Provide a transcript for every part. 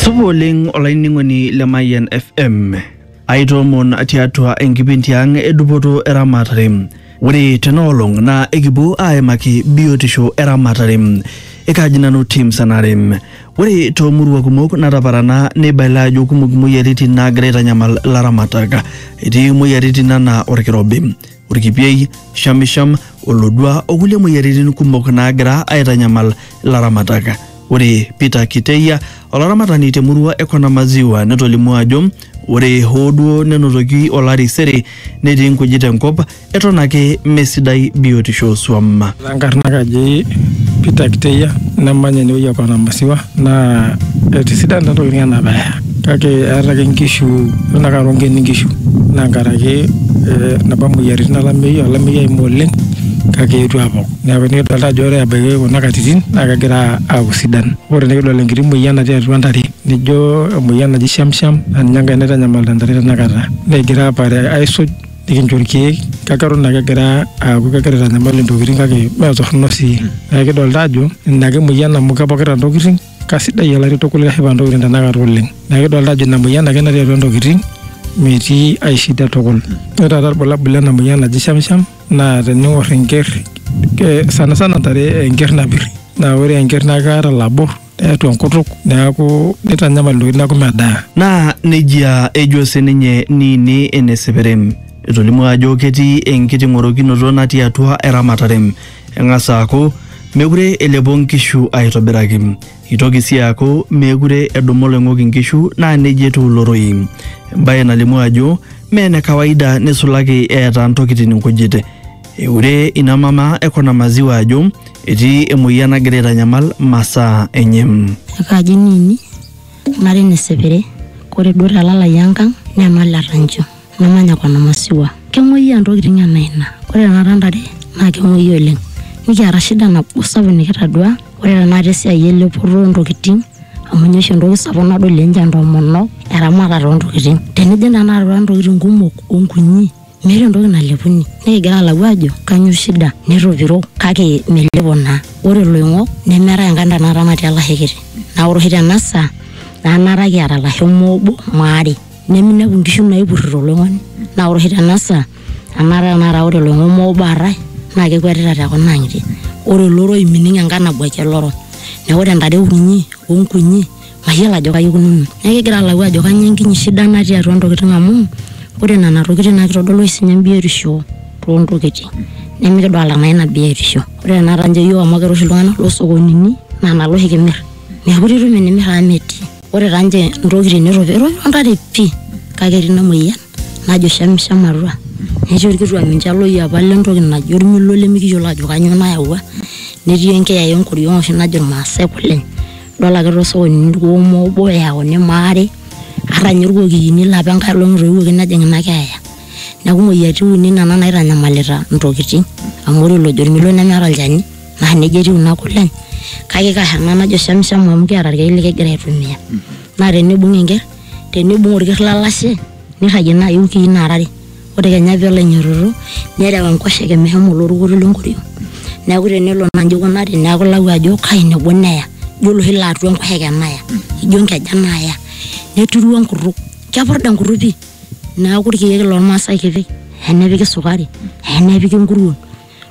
Supa oleng olainining'oni le Mayian FM. Aitoomon tiatua enkipindi ang edupoto eramatare. Ore tenaolong naa ekipuo aimaki biotisho eramatare. Ekaji nanu Tim Sanare. Ore toomurua kumok nataparana neibalie ajo kumok imoyiaritin naagira aitanyamal ilaramatak. Etii imoyiaritin anaa olkirobi. orkipiei, shamisham, olodua o kulie moyiaritin kumok naagira aitanyamal ilaramatak. Ore Peter Kiteia, olaramatani te murua e Kona Maziwa netolimuo ajo ore hoo duo nenotoki olari sere netii nkujit enkop eton ake mesidai biotisho oo swam. Enkarna kaji Peter Kiteya namanya enewueji e Kona Masiwa naa etisidana ntokitin ena bae kake eeta ake nkishu eton ake aa ronkeni nkishu naa nkaraki napa moyiaritin olameyu olameyu oewuo oleng kake eetuo aapok neeku nikidolita ajo ore ebaiki kuna katitin naa kegira aaku sidan. Ore enikidol enkiti moyian natii atua ntare nijo emoyian naji shamsham naa ninye enkae naitanyamalita ntare tenakata negira aapare aisuj nikincho irkeek kake eton ake egira aaku kegira aitanyamal intokitin kake mee torrono sii neeku kidolta ajo ina ake emoyian amu kepokita intokitin kasidai olari tukul keshipa intokitin tenakata oleng neeku kidolta ajo ina moyian ake natii atua intokitin metii ae shida tukul ore taata irbulabul lena moyian naji shamsham naa tening'orr enkerr eh, sanasana intare enkerr napirr naa ore enkerr naa keeta ilabor. neatua enkutuk neaku neitanyamal intokitin neaku medaa. Naa nejia ejo sininye Niini ene Seperem. Etolimuo ajo ketii enkiting'orokinoto natii atua eramatare. Eng'as aaku mekure elepo nkishu aitobiraki. Eitoki sii aaku meekure edumu oloing'ok inkishu naa nejia etiu ilo rorei. Embae nalimu ajo mee ene kawaida neisulaki eeta ntokitin nkujit. Eure ina mama e Kona Maziwa ajo Etii emoyian nagira aitanyamal masaa enye. Ekaji nini nari nesepere kore duo te lalai enkang nemal etancho namanya kona masiwua kemoyia ntokitin ena ina kore tenakata ntare naa kemoyia oleng nikiata shida nabo sapuk nikitadua ore tenakata esiai elepoto ontokitin amu inye oshi entoki sapuk nadol ninche entomonok eramatare ontokitin tenijing tenakata atua ntokitin kumok onkunyi. Meeta entoki nalepuni. Nikigira alau ajo kanyoo shida netopiro kake melepo naa. Ore iloing'ok nemeetae enkae ntae naata natii olashe kiti. Naa ore oshi tena saa naa naata kiata ilasho moo obo maa are. Neminepu inkishu naipurrito oloing'oni. Naa ore oshi tena saa anaata tenakata ore oloing'ok moo obo aatae naa kekuetita te kuna ang'itie. Ore oloroi mining enkae nabuaki oloro. Neeku ore intare kunyi o nkunyi mayiolo ajo kaji ikununo. Neeku kigira alau ajo kainyioo enkinyi shida natii atua ntokitin amu ore nena tokitin naa kitodolu oshi sininye biotisho too ntokitin nimikidolita naa ina biotisho. Ore tenakata ninche iyiook amu kira oshi iltung'anak loo sokonini naa nena oshi kimirr. Meekure itum enimir amu metii. Ore taa ninche ntokitin neitu etum ntare pii kake etii ina muoyian. najo shamsham atua netii orkituak ninche loyiapa lentoki naji ormilo lemikiyiolo ajo kanyoo nayawua netii enkiyaya enkoriong oshi najo irmaasae kuleny idol ake tosokonini irkuoma obo eyauni maare ata ninye irkokiyini lapa enkae olong etoiwuoki nejing ina keeya neku imoyiaritin uni nena naitanyamalita intokiting amu ore olojo ormilo nemeeta olchani naa nejia etiu ina kuleny kake ikasha ena najo shamsham amu kiata irkeek likigira aitumia naa tenibung enkerr. tenibung orker lalashe nirragie naaji iwikii nara are ore kenya peelo ainyototo nerew enkoshoke meshomo olorukuto lenkoriong neeku tenelo naa inji ikunari neeku ilau ajo kai nebo neya ijo oloshi laa atua enkoshoke naya ijo inkeja naya neturu enkutuk kepurda enkutuk pii neeku irkeek lormasae kipik enepiki sukari enepiki inkuruon.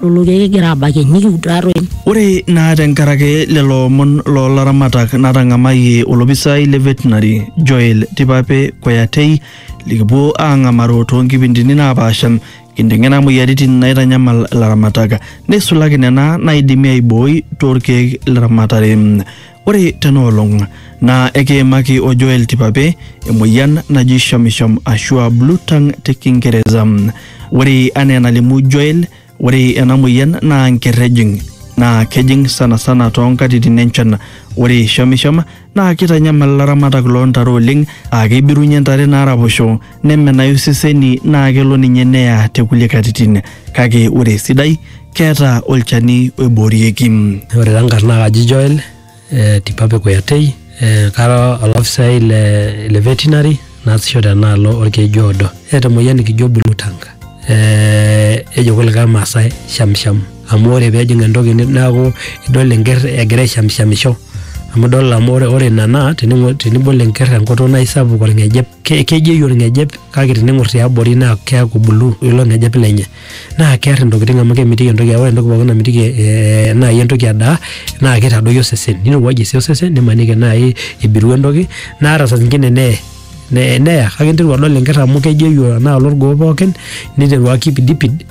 lolo keek kigira aabakie nikiud taatoi. Ore naa tenkaraki lelo omon loo laramatak natang'amayie olopisai le Veterinary Joel Tipape Koyatei likipuo aang'amaro too nkipindini naapaasha kinteng'ena moyiaritin naitanyamal ilaramatak neisulaki nena naaidimi aibooi too lkeek le ramatare. Ore tena olong naa ekiimaki o Joel Tipape emoyian naji shamisham ashu a blue tongue te Kingereza. Ore anaa enalimu Joel, ore ena moyian naa nker ejing naa kejing sanasana too nkatitin enchan. Ore shamisham naa keitanyamal ilaramatak loo ntare oleng aa keibirunye ntare naaraposho nemenayu iseseni naa kelo ninye neya te kulie katitin kake ore esidai keeta olchani oiboorieki. Ore taa nkarn naa kaji Joel eh, Tipape Kuyatei eh, kara olafisai le, le veterinary naasisho tenaalo orkeju oodo. Eeta emoyian nikijo blue tongue eh, ejo kulikae Maasai shamsham amu ore peejing entoki ni- neaku idol enkerr egira aishamshamisho amu idol amu ore, ore ina naa tening'o- tenibol enkerr enkutuk naa aisapuk orng'ejep. ke- kejeyu olng'ejep kake tening'or tiabori naa keaku bulu ilo ng'ejep lenye naa kear intokitin amu kemitiki entoki ore entoki pookin namitiki eh, naaji entoki edaa naa keitadoyio osesen nirowuajie sii osesen nimaniki naaji ibiru entoki naa ata saa zingine neye ne- neya kake interu adol enker amu kejeyu enaalo orgoo pookin niteru akipidipid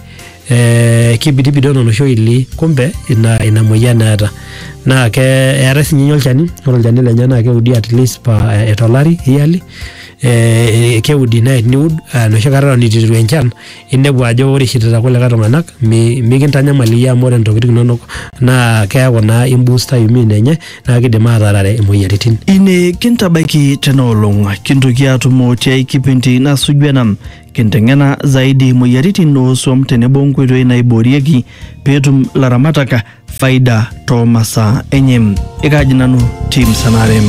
eh, kibidibidon oloshi oili kumbe ina, ina moyian eeta naa ke eetae sinye ninye olchani ore olchani lenye naa keudi at least pa eh, tolari yearly eh, keudi naa teniud eh, enoshi kata eton itu eiteru enchan inepu ajo ore ishirita kulikae tung'anak mi- mikintanyamal iyie amu ore intokiting inonok naa keeku naa imbusta immune enye naa kidim atarare imoyiaritin ine kintabaiki tena olong kintoki atumo tiai kipindi nasuju ena Kinteng'ena zaidi moyiaritin oo swam tenebo nkoitoi naiboorieki peetum laramatak faida too masaa enye. Ekaaji nanu Tim Sanare.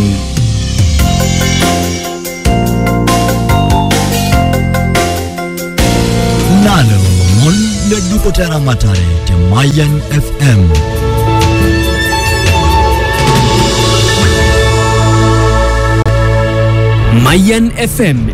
Lalo mon le dupoto eramatare te Mayan FM. Mayan FM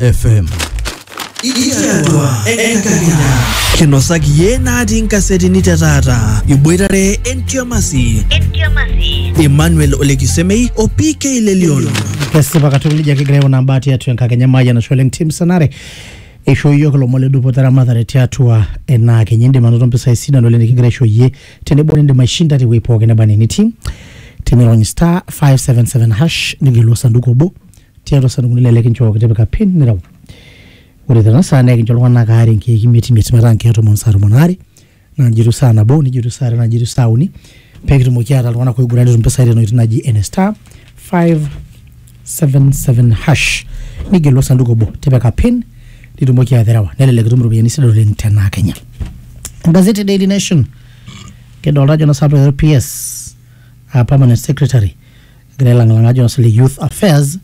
FM. Itiatua enkakenya. Kinosaki yie natii nkasetini te taata. Iboitare entiamasi. Emmanuel Olekisemei o PK Lelion. kesipa katukul ijo kigira aikunaa mbaa tiatua enkakenya maayia nasho oleng tim sanare eishoo iyiook ilomon ledupoto eramatare tiatua enaakenya indim anoto mpisai sidan oleng nikigira aisho iyie tenebo nindim aishinda tewuei pookin neba enaa enitii tinirony star 577 hash nigelu osanduku obo tiatua isandukunoni lelo kinchooki tipika pin nireu ore tena saa naa ekincho iltung'anak aare inkeek imiet imiet metaa inkeek tomon saa tomon aare naa nijo etiu saa nabo nijo etiu saa are naa nijo etiu saa uni pekitumoki aata iltung'anak oiguran netum impisai tena oitoi naji ene star 577 hash nigelu osanduku obo tipika pin nitumoki aterewa nelelek itum iropiyiani sidan oleng tenaa kenya gazeti daily nation kidolta ajo nosapita PS uh, permanent secretary egira ailang'ilang'a ajo sile youth affairs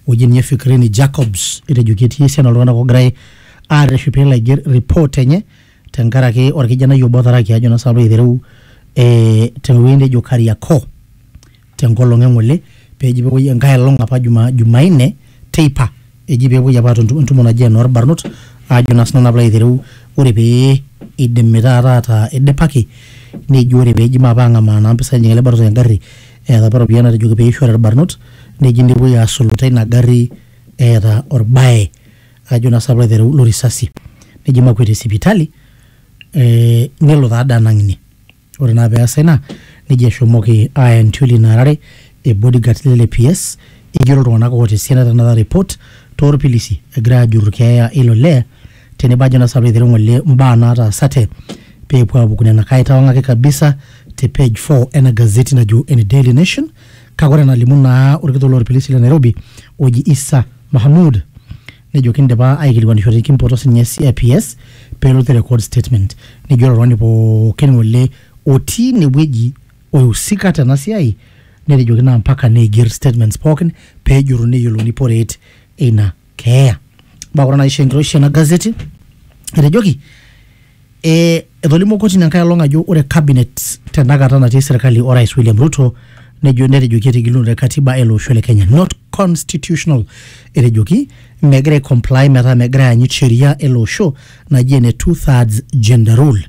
wueji ninye Fikirini Jacobs etejo ketii esiana oltung'anak oogirai aarreshu peelo aiger report enye tenkaraki orkijanai obo otaraki ajo naa sinanu piilo aitereu eh, tewueji nejo Kariakoo tenkolong' eng'ole peji pepuoi enkae olong' apa juma, Jumanne teipa eji pee epuoi apa atum entumo naji enoorbarnot aajo naa sinanu apilo aitereu ore pee idimi taata ataa idipaki neji ore peeji maape ang'amaa naa mpisai enye ele barnoti engarri eeta apa iropiyiani natejoki peishori irbarnot neji nepuoi asulu teina garri eeta orbaye ajo naa sinanu piilo aitereu lo risasi neji makueti sipitali eh nelo taade anang ine. Ore naa peasa ina, nejo eshomoki aaya entiol ina arare e bodyguards le LAPS igero iltung'anak oota esiana tenakata report toorpilisi egirai aajurru keeya eilo lee tenebo ajo naa sinanu aitereu ng'ole mbaa naataasate peepuo aapuku nena. Kaaitawang'aki kabisa te page four ena gazeti najo ene Daily Nation kake ore enalimu naa olkitok loorpilisi le Nairobi oji Isa Mahamud nejo kindipa aikilikuanisho te kimpoto sinye e CIPS pelotu te record statement nejo ore oltung'ani pookin ng'ole otii inewueji oihusika tena siai netejoki naa mpaka neiger statements pookin pejuruni neyiolouni poreet eina keeya. Baa ore naisho enkiroshi ena gazeti etejoki E, etolimuo kotini enkae olong ajo ore cabinet tenakata natii serkali orais William Ruto nejo netejoki etigilunore katiba ele osho le Kenya not constitutional etejoki megira aicomply metaa megira aanyit sheria ele osho naji ene two thirds gender rule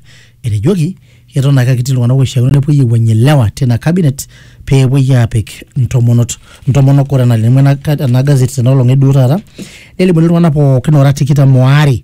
etejoki eton ake ketii iltung'anak oishiakino nepuoi aiwuang'ie ilewa tina cabinet pee epuoi aapik intomonot intomonok ore enalimu ena, ena gazeti tena olong eduo taata nelimuni iltung'anak pookin oora tikitam oare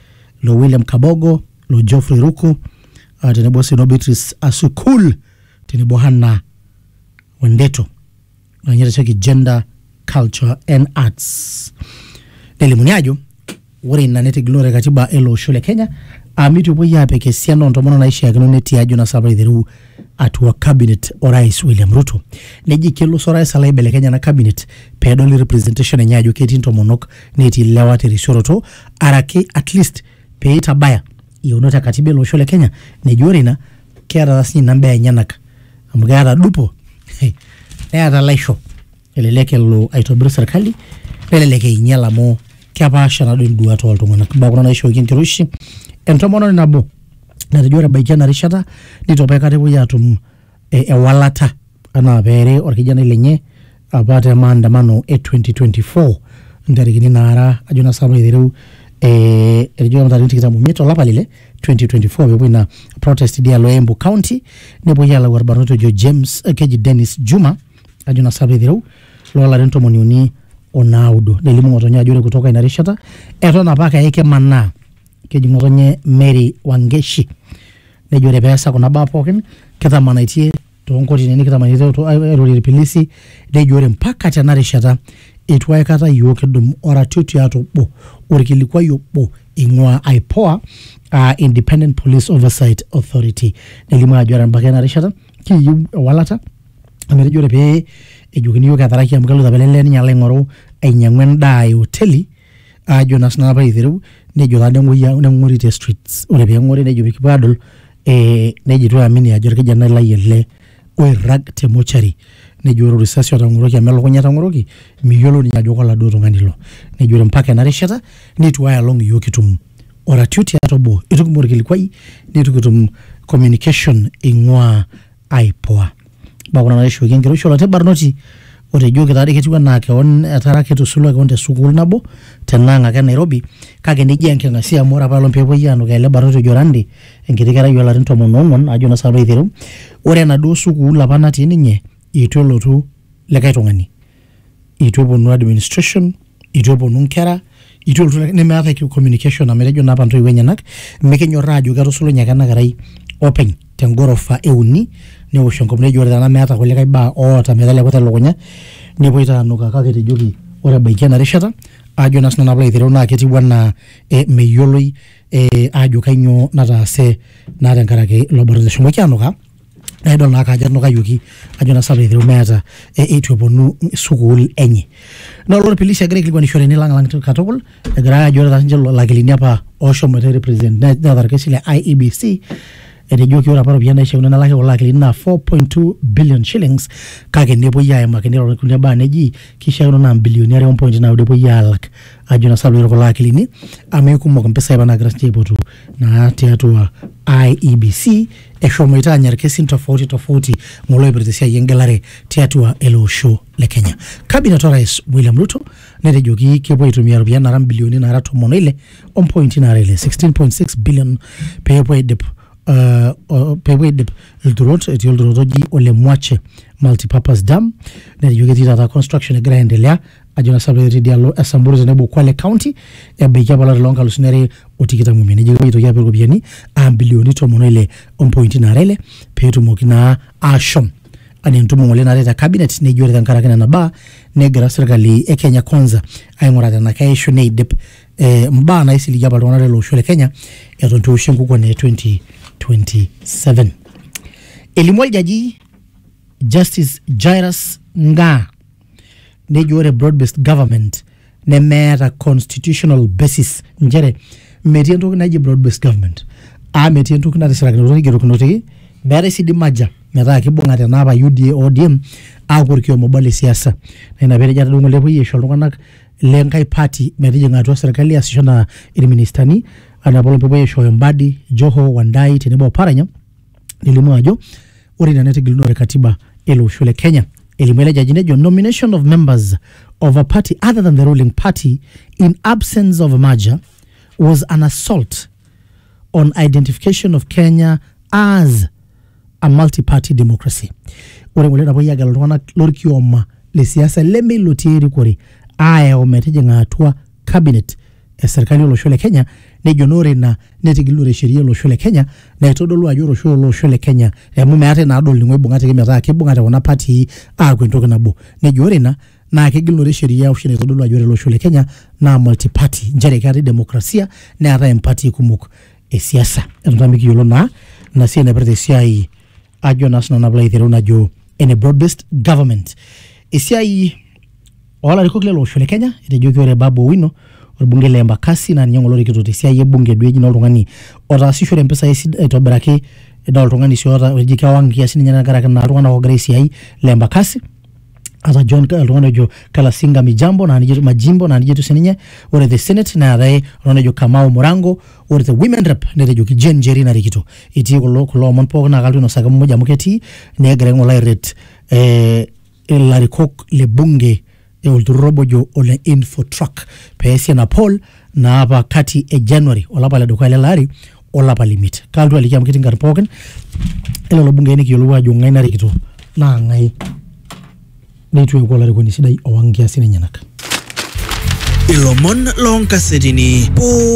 lo William Kabogo, lo Geoffrey Ruku uh, tenebo sii no Beatrice Asukul tenebo Hanna Wendeto ninye itasheki gender culture and arts nelimuni ajo ore ina netigilore katiba ele osho le Kenya amu epuoi aapik esiana oontomonok naishiakino netii ajo nasa apa aiteru atua cabinet orais William Ruto neji kelo oso orais alo aibelekeny ena cabinet peedoli representation enye ajo ketii intomonok netii lewa terisioroto araki at least pee itabaya iyieunot e katiba ele osho le Kenya neji ore ina keeta taa sinye ina mbaa enyenak amu keeta dupo neeta laisho elelek elo aitobir serkali nelelek einyial amu kepaasha naaduo induat oltung'anak imbaa kuna naishooki enkiroshi entomononi nabo natejo ore ebaiki ena rishata nitu apa aikata epuoi atum e, ewalata anaa peere orkijanai lenye apa te maandamano e 2024 ntarikini naara ajo naa sinanu aitereu eh, etejo apa ntarikini tikitam omiet olapa lile 2024 pepuoi ina protest idialo e Embu County nepuoi alau orbarnoti ojo James eh, keji Dennis Juma ajo naa sinanu aitereu loolarin tomoni uni onaudo nelimu ng'otonye ajo ore kutoka ina rishata eton apake ake kemanaa keji ng'otonye Mary Wangeshi nejo ore peesa kuna baa pookin kitamanaitie toonkotinini kitamanaitie to- airorie irpilisi nejo ore mpaka tena rishata eitu aikata iyiook kidum oratioti ata obo orkilikuai obo ing'ua IPOA aa Independent Police Oversight Authority nelimu ajo ore embaki ena rishata kiyieu ewalata amu etejo ore pee ejokini iyiook etaraki amu keloito apa ele lee ninye alo aing'oru ainyiang'u endaa e oteli ajo naa sinanu apa aitereu nejo taa neng'ori neng'ori te streets ore peng'ori nejo pikipuo adol eh, nejo itu amini ajo orkijanai lai ele oirrag te mochari nejo ore risasi otang'oroki amu elukunya etang'oroki miyiolo ninye ajo koladuo tung'ani ilo nejo ore mpaka ena rishata nitu ae olong iyiok kitum oratioti ata obo itu kitum orkilikuai nitu kitum communication ing'ua aipua mbaa kuna naishooki enkiroshi oloti barnoti otejoki taadii ketiu anaa keon etara ketusulua keon te sukuul nabo tenaang ake e Nairobi kake nejia enking'asia amu ore apa olong peepuoi aanukaa ele barnoti ojo Randi enkiti kerai oolarin tomon oong'uan ajo naa sinanu aiteru ore enaduo sukuul apa natii ninye eitu elotu likae tung'ani itu eponu administration itu eponu nkera itu elotu likae- nemeetae ki- communication amu etejo naa apa ntoiwuo enyenak mikinyorraa ajo ketusulunye ake ena kerai openy tengorofa euni newosh enkop nejo ore tena meeta kulikae baa oota meteleku telukunya nepuoi taa anukaa kake etejoki ore ebaiki ena rishata ajo naa sinanu apalo aitereu naa ketiu anaa eh, meyioloi eh, ajo kainyoo nataase naa tenkaraki ilo barnot eshomoki anukaa naa idol naake ajo enukayioki ajo naa sapa eitereu meeta e- eitu eponu sukuul enye naa ore pilisi egira aikilikuanishore enilang'lang katukul egira ajo ore taa sinche lakilini apa ooshomoita represent ne- neeta orkesi le IEBC etejoki ore apa iropiyiani naishiakino nelaki kulo akilini naa 4.2 billion shillings kake nepuoi aimaki niroro kulie baa neji kishiakino naa imbilioni are ompointi naudo epuoi alak ajo naa sapa piitu kulo akilini amu eikumok impisai apa naagira sinche aipotu naa tiatua IEBC eshomoita anya irkesin tofauti tofauti ng'ole oipirta esiai engelare tiatua ele osho le Kenya. Cabinet orais William Ruto netejoki kepuo aitumia iropiyiani naara mbilioni naara tomon oile ompointi naara ile 16.6 billion peepuo aidip uh, o- peepuo aidip ilturot etii olturot oji ole Mwache multipurpose dam netejo ketii taata construction egira aendelea ajo na sape etii dialo e Samburu tenebo Kwale County ebaiki apa olari loo nkalusuni are o tikitam omiet nejo kepuoi aitoki apik iropiyiani aa mbilioni tomon oile ompointi naara ile peetumoki naa aashom anaa entumo ng'ole natii te cabinet nejo ore tenkaraki nena baa negira serkali e Kenya Kwanza aing'uraa tena keishu neidip eh, mbaa naisiligie apa iltung'anak lele osho le Kenya eton itu eoshi enkukuo naa e 2027 elimu oljaji Justice Jairus Ngaa nejo ore broad based government nemeeta constitutional basis nchere metii entoki naji broad based government aa metii entoki natisirakinote naigerokinote meetae sii di merger metaa kibung'ate ena apa UDA ODM aaku orkioma obo le siasa naa ina peetejo atadua ng'ole epuoi aisho iltung'anak le nkae party metijing'a atua serkali aasisho enaa irministani enaa apaelong pepuoi aishooyo Mbadi, Joho, Wandai tenebo o Paranya nelimu ajo ore ina netigilunore katiba ele osho le Kenya. Elimu ele jaji nejo nomination of members of a party other than the ruling party in absence of a merger was an assault on identification of Kenya as a multi-party democracy. Ore ngole napuoi agelu iltung'anak lorkioma le siasa leme ilo otii erikore aayau metijing'a atua cabinet e serkali olosho le Kenya nejo naa ore ina netigilunore sheria olosho le Kenya naitodolu ajo ore oshi olosho le Kenya amu meetae naa dol ninye oibung'ate ake metaa kibung'ate kuna patii aaku entoki nabo nejo ore ina naa kegilunore sheria oshi naitodolu ajo ore olosho le Kenya naa multi party nchere keetae demokrasia neetae impatii kumok e siasa eton taa mikiyiolo naa ina siai naipirta esiai ajo naa sinanu naa piilo aitereu najo ene broad based government esiai Olarikok lele osho le Kenya etejoki ore Babu Owino orbungei le Embakasi naa ninye ng'ole orikito tesiai e bunge duo eji naa oltung'ani otaasishore mpisai esid- aitobiraki naa oltung'ani sii oota eji kewang nkiasin enyenak tenkaraki naa iltung'anak oogira aisiai le Embakasi ata John oltung'ani ojo Kalasinga Mijambo naa nijia etiu Majimbo naa nijia etiu sininye ore te senate neetae oltung'ani ojo Kamau Murango ore te women rep netejoki Jane Njeri narikito etii kulo kulo omon pookin naa kalotu ainosaki muj amu ketii negira aing'oru airret eh ilarikok le bunge e olturur obo ojo ole Infotruck pee easi ena poll naapa kati e January olapa le dukuya lele ari olapa le imiet. Kaalotu aliki amu ketii nkarn pookin e lelo bungei nikiyiolou aajo ng'ae narikito naa ng'ae neitu eeku olarikoni sidai owang' nkiasin enyenak. Ilomon loonkasetini pooki.